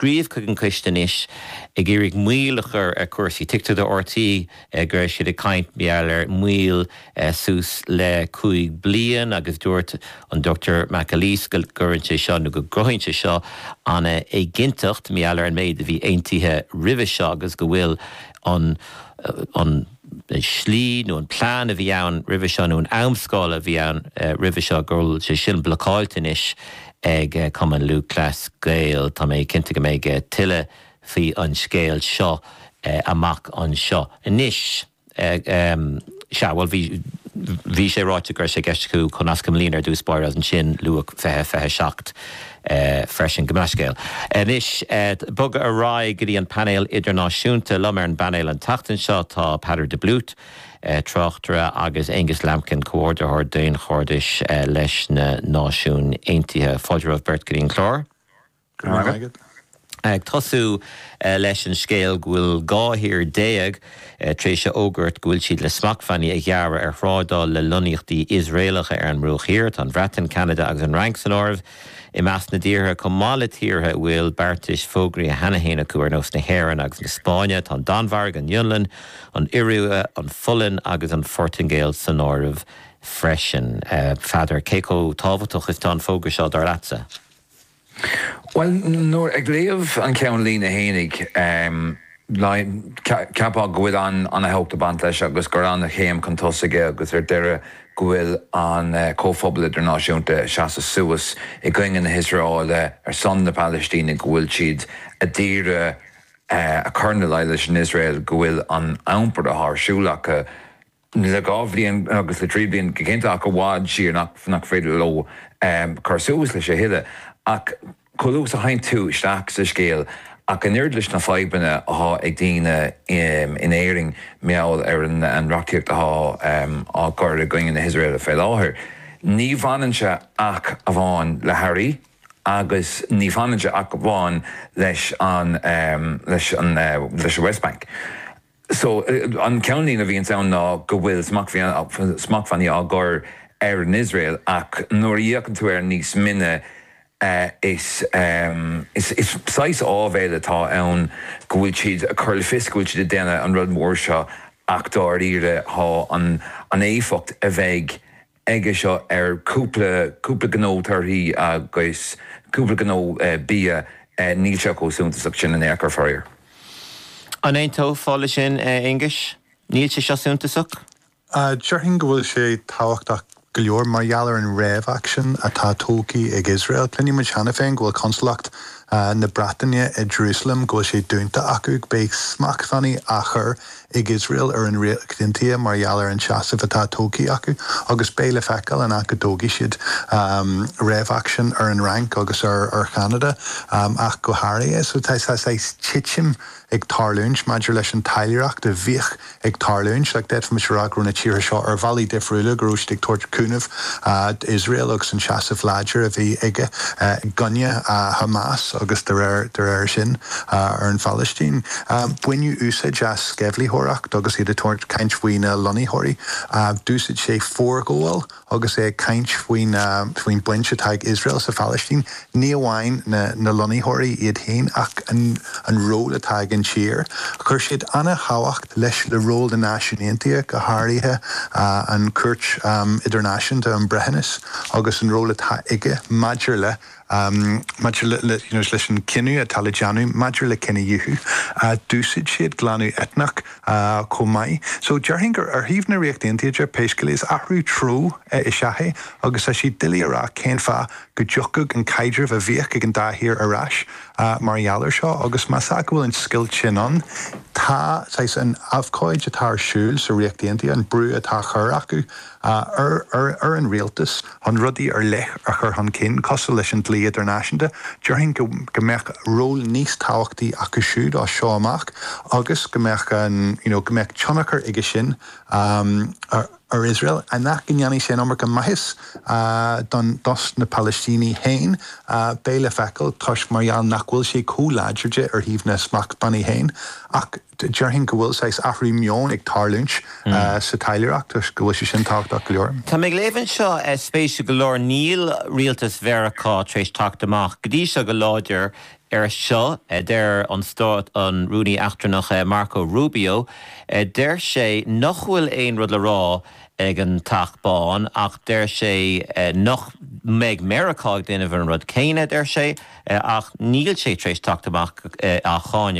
scríobh chuig an coiste anois ag iarraidh moill a chur ar chúrsaí. Tuigtear do RTÉ go bhfuil siad ag caint mar gheall ar mhoill suas le cúig bliain agus dúirt an Dr McAleese go gcuireann sé seo nó go gcruthaíonn sé seo an-éiginnteacht mar gheall ar an méid a bhí aontaithe roimhe seo agus go bhfuil an an slí nó an plean a bhí ann roimhe seo nó an amscála a bhí ann roimhe seo go bhfuil sé sin blocáilte anois ag Cumann Lúthchleas Gael. Tá mé cinnte go mbeidh tuilleadh faoi an scéal seo amach anseo. Anois, sea, bhuel bhí, bhí sé ráite go raibh sé i gceist acu comhnascadh an bhliain ar dtús báire agus ansin luadh 2027. freisin. Go mbeadh scéal. Anois bogadh ar aghaidh go dtí an painéal idirnáisiúnta. Liom ar an bpainéal an tseachtain seo tá Peadar de Blúit, tráchtaire agus Aonghus Lambkin, comhordaitheoir daonchairdis leis na Náisiúin Aontaithe. Fáilte romhaibh beirt go dtí an clár. Go raibh maith agat. Ag tosú leis an scéal go bhfuil 12 thír tar éis a fhógairt go bhfuil siad le smachtbhannaí a ghearradh ar thrádáil le lonnaíochtaí Iosraelacha ar an mBruach Thiar. Tá an Bhreatain, Ceanada agus an Fhrainc san áireamh i measc na dtíortha, chomh maith le tíortha a bhfuil beartais fógraíthe cheana féin acu ar nós na hÉireann agus na Spáinne. Tá an Danmhairg, an Fhionlainn, an Iorua, an Pholainn agus an Phortaingéil san áireamh freisin. A Pheadair, cé chomh tábhachtach is tá an fógra seo, dar leatsa? Bhuel, nuair ag léamh an ceannlíne fhéinig, cheapfá go bhfuil an-tábhacht ag baint leis agus gur ana-chéim chun tosaigh é agus ar deireadh go bhfuil an comhphobal idirnáisiúnta ag seasamh suas i gcoinne na hIosraeile ar son na Palaistíne, go bhfuil siad a d'iarraidh a chur ina luí leis an Iosrael go bhfuil an iompar atá ar siúl acu. le dhá bhliain agus le trí bliana go cinnte ach i bhfad siar nach féidir leo cur suas leis a thuilleadh ach chomh luath is a thagann tú isteach sa scéal ach an oiread leis na fadhbanna atá ag daoine in Éirinn mar gheall ar an reachtaíocht atá á gcur i gcoinne na hIosraeile fé láthair ní bhaineann sé ach amháin le hearraí agus ní bhaineann sé ach amháin leis an West Bank. So, an ceannlíne a bhíonns ann ná go bhfuil smachtbhannaí á gcur ar an Iosrael ach nuair a fhéachann tú air níos mine is saghas áibhéil atá ann go bhfuil siad ag cur le fios go bhfuil siad ag déanamh an rud mhór seo ach dáiríre tá an éifeacht a bheidh aige seo ar cúpla, cúpla gnó torthaí agus cúpla gnó bia. Níl sé chomh suntasach sin in aon chor, faraor. An aontófá le sin, a Aonghuis? Níl sé seo suntasach? Déarfainn go bhfuil sé tábhachtach go leor mar gheall ar an réamhaicsean atá tógtha ag Iosrael. Cluineann muid cheana féin go bhfuil consalacht na Breataine i Jerusalem, go bhfuil sé dúnta acu. Beidh smachtbhannaí á chur ag Iosrael ar an Ríocht Aontaithe mar gheall ar an tseasamh atá tógtha acu agus beidh le feiceáil an ea go dtógfaidh siad réamhaicsean ar an Fhrainc agus ar Cheanada ach go háirithe. So tá saghas titim ag tarlúint maidir leis an taidhleoireacht a bhíodh ag tarlúint. Like d'fhéadfaimis a rá go raibh na tíortha seo ar bhealaí difriúla go raibh siad ag tabhairt cúnamh d'Iosrael agus an seasamh láidir a bhí aige i gcoinne Hamas agus de réir sin ar an Phalaistín. Baineadh úsáid as sceimhlitheoireacht agus iad ag tabhairt caint faoi na lonnaitheoirí. D'úsáid sé forghabháil agus é ag caint faoin, faoin baint atá ag Iosrael sa Phalaistín, ní amháin na lonnaitheoirí iad féin ach an ról atá ag an tír. Chuir siad ana thábhacht leis le ról na Náisiún Aontaithe, go háirithe an Cúirt Idirnáisiúnta um Breithiúnas agus an ról atá aige maidir le. Maidir leis an gcinneadh atá le déanamh maidir le cinedhíothú, d'úsáid siad glanadh eitneach chomh maith. So déarfainn gur ar thaobh na Ríocht Aontaithe de, pé scéal é, is athrú treo is ea é agus tá sé doiligh a rá cén fáth go dtiocfadh an caidreamh a bhíodh ag an dá thír ar ais mar gheall air seo agus más ea go bhfuil an scoilt sin ann, tá saghas an abhcóid atá ar siúl sa Ríocht Aontaithe, an brú atá á chur acu. ar an rialtas chun rudaí ar leith a chur chun cinn cosúil leis an dlí idirnáisiúnta, déarfainn go mbeadh ról níos tábhachtaí acu siúd as seo amach agus go mbeadh an, you know, go mbeadh tionchar aige sin ar Iosrael an ea go ndéanfaidh sé an iomarca maitheas don, dos na Palaistínigh féin beidh le feiceáil toisc mar gheall nach bhfuil sé chomh láidir de ar thaobh na smachtbhannaí féin ach, Déarfainn go bhfuil saghas athrú meoin ag tarlúint sa taidhleoireacht agus go bhfuil sé sin tábhachtach go leor. Tá mé ag léamh anseo, spéisiúil go leor, níl rialtas Mheiriceá tar éis teacht amach go dtí seo go láidir ar seo, deir an Stát, an Rúnaí Eachtrannach Marco Rubio, deir sé nach bhfuil aon rud le rá ag an Teach Bán ach deir sé nach mbeidh Meiriceá ag déanamh an rud céanna, deir sé, ach níl sé tar éis teacht amach á cháineadh.